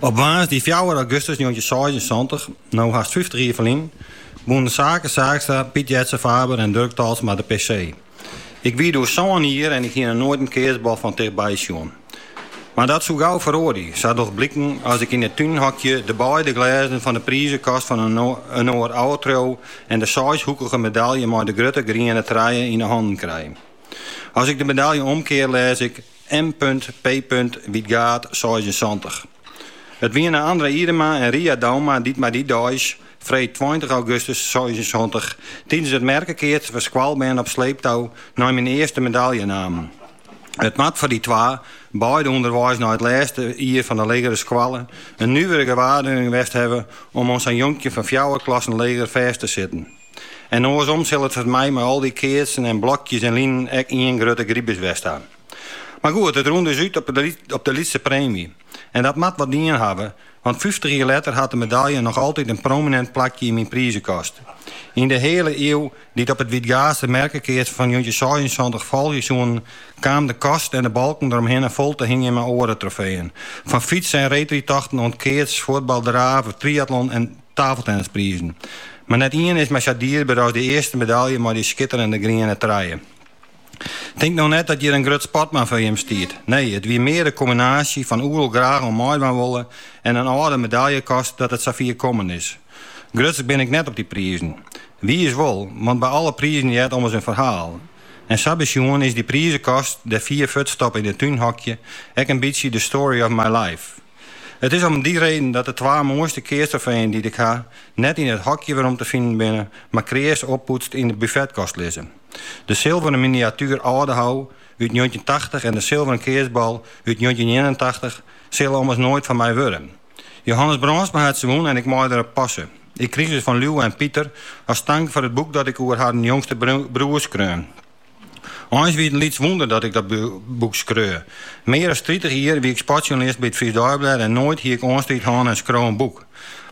Op woansdei fjouwer augustus njoggentjinseisensantich, no hast fyftich jier ferlyn, wûnen Sake Saakstra, Piet Jetze Faber en Durk Talsma de PC. Ik wie doe sân jier en ik hie noch noait in keatsbal fan tichtby sjoen. Mar dat soe gau feroarje, sa docht bliken as ik yn it túnhokje de beide glêzen fan de prizekast fan inoar ôf triuw en de seishoekige medalje mei de grutte griene trije yn 'e hannen krij. As ik de medalje omkear lês ik. MPP. Wytgaard, seisensantich. It wiene André Idema en Ria Douma dy't my dy deis, freed tweintich augustus seisensantich, tidens it merkekeatsen foar skoalbern op sleeptou nei myn earste medalje namen. It moat foar dy twa, beide ûnderweis nei it lêste jier fan de legere skoalle, in nuvere gewaarwurding west hawwe om oan sa'n jonkje fan fjouwer klassen leger fêst te sitten. En oarsom sil it foar my mei al dy keatsen en blokjes en linen ek ien grutte gribus west ha. Mar goed, it rûn dus út op de lytse preemje. En dat moat wat dien hawwe, want fyftich jier letter hat de medalje noch altyd in prominint plakje yn myn prizekast. Yn de heale iuw dy't op it Wytgaadster merkekeatsen fan njoggentjinseisensantich folgje soene, kaam de kast en de balken deromhinne fol te hingjen mei oare trofeeën. Fan fyts- en reedrydtochten oant keats, fuotbal, draven, triatlon en. Tafeltennisprizen. Mar net ien is my sa dierber as dy earste medalje mei dy skitterende griene trije. Tink no net dat hjir in grut sportman foar jim stiet. Nee, it wie mear de kombinaasje fan oeral graach oan meidwaan wolle en in âlde medaljekast dat it sa fier kommen is. Grutsk bin ik net op dy prizen. Wiis wol, want by alle prizen heart ommers in ferhaal. En sa besjoen is dy prizekast dêr fier fuortstoppe yn it túnhokje ek in bytsje de story of my life. It is om dy reden dat de twa moaiste keatstrofeeën dy't ik ha, net yn it hokje werom te finen binne, mar kreas oppoetst yn de buffetkast lizze. De silveren miniatuer Aldehou út njoggentjin tachtich en de silveren keatsbal út njoggentjin ienentachtich sille ommers noait fan my wurde. Johannes Brandsma hat se wûn en ik mei der op passe. Ik krige se fan Liuwe en Piter as tank foar it boek dat ik oer harren jongste broer skreaun. Eins wie it in lyts wûnder dat ik dat boek skreau. Mear as tritich jier wie ik sportsjoernalist by it Frysk Deiblêd en noait hie ik oanstriid hân en skriuw in boek.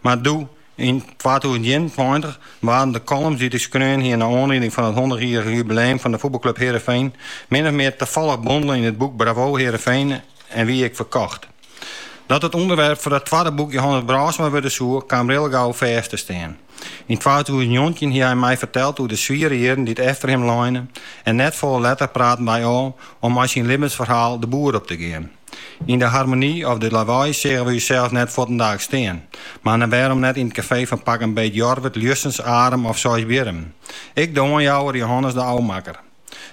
Mar doe yn twatûzen ienentweintich waarden de columns dy't ik skreaun hie nei oanlieding fan it hûndertjierrich jubileum fan de fuotbalklup Heerenveen min of mear tafallich bondele yn it boek Bravo Heerenveen en wie ik ferkocht. Dat it ûnderwerp foar dat twadde boek Johannes Brandsma wurde soe, kaam rillegau fêst te stean. Yn twatûzen njoggentjin hie hy my ferteld oer de swiere jierren dy't efter him leine en net folle letter praten wy ôf om mei syn libbensferhaal de boer op te gean. Yn de Harmonie of De Lawei seagen we ússels net fuortendaliks stean, mar dan wêrom net yn it kafee fan pak 'm beet Jorwert, Ljussens, Arum of Seisbierrum? Ik de oanjouwer, Johannes de ôfmakker.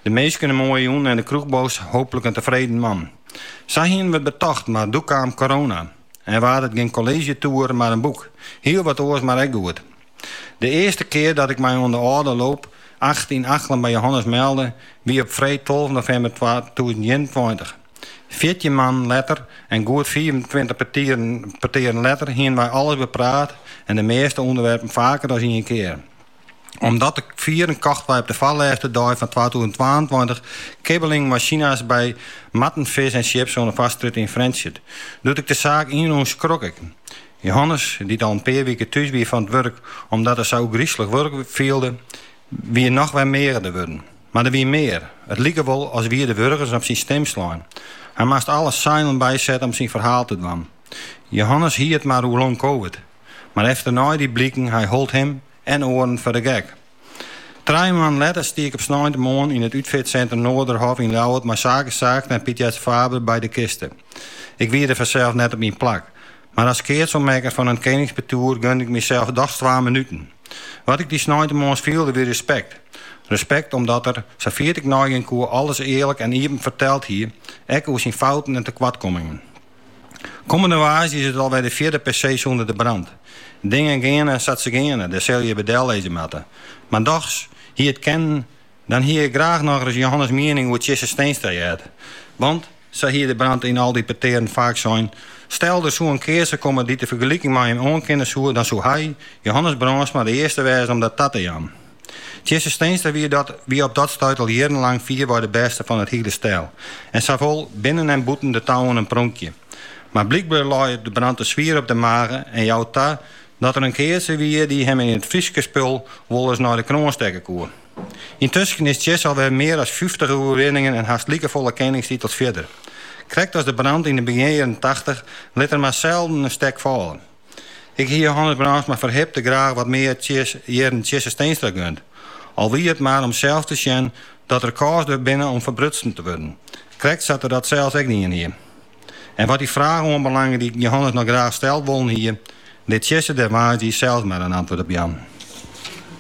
De minsken in moaie jûn en de kroechbaas hooplik in tefreden man. Sa hienen we it betocht, mar doe kaam corona. En waard it gjin kolleezjetoer, mar in boek. Hiel wat oars, mar ek goed. De earste kear dat ik my oan de Alde Loop acht yn Achlum by Johannes melde wie op freed tolve novimber twatûzen ienentweintich. Fjirtjin moannen letter en goed fiifentweintich petearen letter hiene wy alles bepraat en de measte ûnderwerpen faker as ien kear. Om dat te fieren kochten wy op de foarlêste dei fan twatûzen twaentweintich kibbeling mei sinas by Marten Fish en Chips oan de Foarstrjitte yn Frjentsjer. Doe't ik de saak ynrûn skrok ik. Johannes, dy't al in pear wike thús wie fan it wurk omdat er sa ôfgryslik wurk fielde, wie noch wer meagerder wurden. Mar der wie mear. It like wol as wie de wurgens op syn stim slein. Hy moast alle seilen bysette om syn ferhaal te dwaan. Johannes hie it mar oer long covid. Mar efternei die bliken hy hold him en oaren foar de gek. Trije moannen letter stie ik op sneintemoarn yn it útfeartsintrum Noarderhof yn Ljouwert mei Sake Saakstra en Piet Jetze Faber by de kiste. Ik wie der fansels net op myn plak, mar as keatsoanmerker fan in keningspartoer gunde ik mysels dochs twa minuten. Wat ik dy sneintemoarns fielde wie respekt. Respekt omdat er, safier't ik neigean koe, alles earlik en iepen ferteld hie, ek oer syn fouten en tekoartkommingen. Kommende woansdei is it alwer de fjirde PC sûnder De Brand. Dingen geane sa't se geane, dêr sille je by dellizze moatte. Mar dochs, hie it kinnen, dan hie ik graach nochris Johannes' miening oer Tjisse Steenstra heard. Want, sa hie De Brand yn al dy petearen faak sein, stel der soe in keatser komme dy't de fergeliking mei him oankinne soe, dan soe hy, Johannes Brandsma, de earste wêze om dat ta te jaan. Tjisse Steenstra wie dat wie op dat stuit al jierrenlang fierwei de bêste fan it hiele stel en sawol binnen en bûten de touwen in pronkje. Mar blykber lei it De Brand te swier op de mage en jou ta dat der in keatser wie dy't him yn it Fryske spul wolris nei de kroan stekke koe. Yntusken is Tjisse alwer mear as fyftich oerwinningen en hast likefolle keningstitels fierder. Krekt as De Brand yn de begjinjierren tachtich lit er mar selden in stek falle. Ik hie Johannes Brandsma ferhipte graach wat mear jierren Tjisse Steenstra gund. Al wie it mar om sels te sjen dat rekôrs der binne om ferbrutsen te wurden, krekt sa't er dat sels ek dien hie. En wat dy fraach oanbelange dy't Johannes noch graach steld wollen hie, lit Tjisse dêr woansdei sels mar in antwurd op jaan.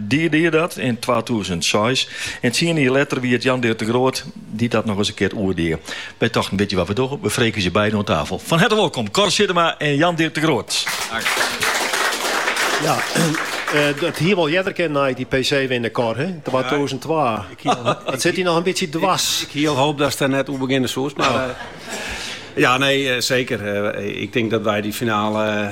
Dy die dat yn twatûzen seis en tsien jier letter wie it Jan Dirk de Groot dy't dat noch ris in kear oer die. Wy tochten, witje wat we dogge, we freegje beiden oan tafel. Fan herte wolkom, Kor Zittema en Jan Dirk de Groot. Ja, it hie wol earder kinnen nei't dy PC winne, Kor, he? Twatûzen twa. It sit dy noch in bytsje dwers. Ik hie al hoop datst der net oer begjinne soest, mar. Ja, nee, seker. Ik tink dat wy dy finale.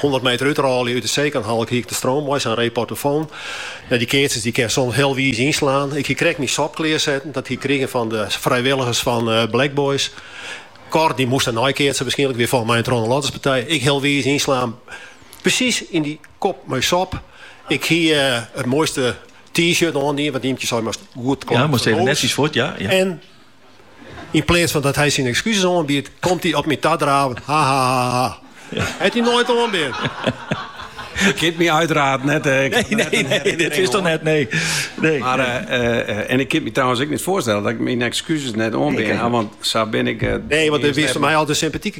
Hûndert meter útrôlje út de Sneker hal hie ik de stroom mei sa'n reportofoan. Ja, dy keatsers dy kinne soms hiel wiis ynslaan. Ik hie krekt myn sop klearsetten, dat hie ik krigen fan de frijwilligers fan Black Boys. Kor dy moast dêrnei keatse wierskynlik, wie folgens my in trochinoarlotterspartij. Ek hiel wiis ynslaan, presys yn dy kop mei sop. Ik hie it moaiste T-shirt oandien, want Ymkje sei moatst goed knap fan de hûs. En Yn pleats fan dat hy syn ekskuses oanbiedt, komt hy op my ta draven. Ha ha ha ha. Ja. Hat hy noait oanbean. Ik kin my uteraard net. Eh, nee, nee, nee, dit is dochs net, nee. nee. Mar, eh, eh, en ik kin my trouwens ek net foarstelle dat ik myn ekskuses net oanbean ha. Want sa bin ik... nee, want hy is foar my altyd sympatyk